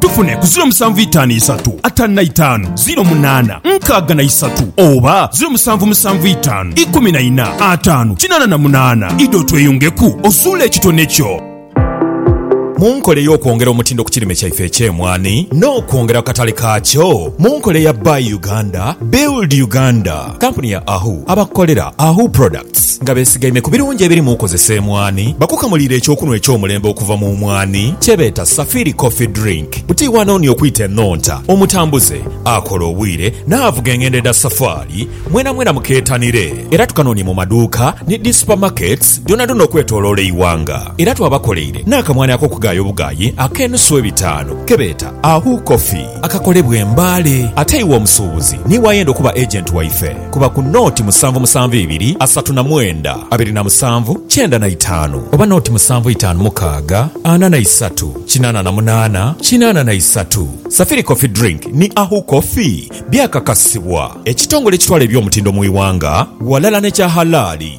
Tufune ku ziro musanvu itaanu isatu ataanu na itaanu ziro munaana nkaaga na isatu oba ziro musanvu musanvu itaanu ikumi na ina ataanu kinaana na munaana. Idha otweyungeku ozuule ekitone kyo. Mu nkola ey'okwongera omutindo ku kirime kyaife eky'emwaani n'okwongera ku katale kaakyo mu nkola eya Buy Uganda, Build Uganda, kampuni ya Ahu abakukolera Ahu Products, Nga besigaime ku birungi ebiri mu kozesa emwani, bakukamuliire eky'okunhwa eky'omulembe okuva mu mwani kye beeta Safiri Coffee Drink. Buti iwe anoonia okwita enhonta, omutambuze, akola obwire, n'avuga engendo edha safaali, mwenamwena mukeetanire. Era tukanoonie mu maduuka ni dhi supamaketi dhoonadhoona okwetoloola eighanga. Era twabakoleire n'akamwani ak'okugaaya obugaayi ak'enusu ebitaanu ke beeta Ahu Coffee. akakolebwa e Mbale. Ate iwe omusuubuzi niiwe ayenda okuba agent waife, kuba ku nooti musanvu musanvu ibiri asatu na mwenda abiri na musanvu kyenda na itaanu oba nooti musanvu itaanu mukaaga ana na isatu kinaana na munaana kinaana na isatu. Safiri Coffee Drink ni Ahu Coffee byakakasibwa ekitongole ekitwala eby'omutindo mu iwanga ghalala n'ekya halaali.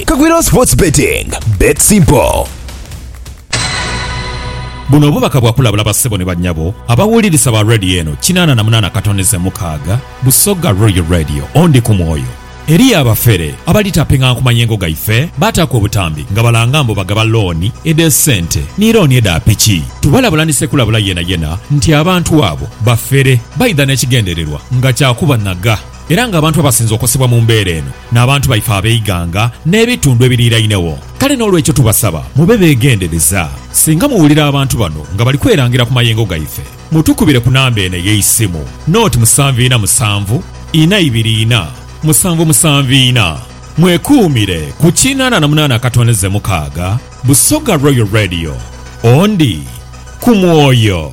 Kagwirawo Sports Betting, Bet Simple. Buno obubaka bwa kulabula bassebo ni bannyabo abawulirisa ba Radio eno kinaana na munaana katoneze mukaaga, Busoga Royal Radio, O Ndi ku mwoyo. Eriyo abafere abali taping'anga ku mayengo gaife, baataaku obutambi nga balanga mbu bagaba looni edh'esente ni looni edha piki. Tubalabula ni ssekulabula yenayena nti abantu abo bafere, baidha n'ekigendererwa nga kya kubanhaga. Era nga abantu abasinze okosebwa mu mbeera eno n'abantu baife ab'eighanga n'ebitundu ebiriirainegho. Kale n'olwekyo tubasaba mube beegendereza. Singa muwulira abantu bano nga bali kwerangira ku mayengo gaife, mutukubire ku namba eno ey'eisimu, noti musanvu ina musanvu, ina ibiri ina, musanvu musanvu ina. Mwekuumire ku kinana na munana akatondeze mukaaga, Busoga Royal Radio. Ondi ku mwoyo.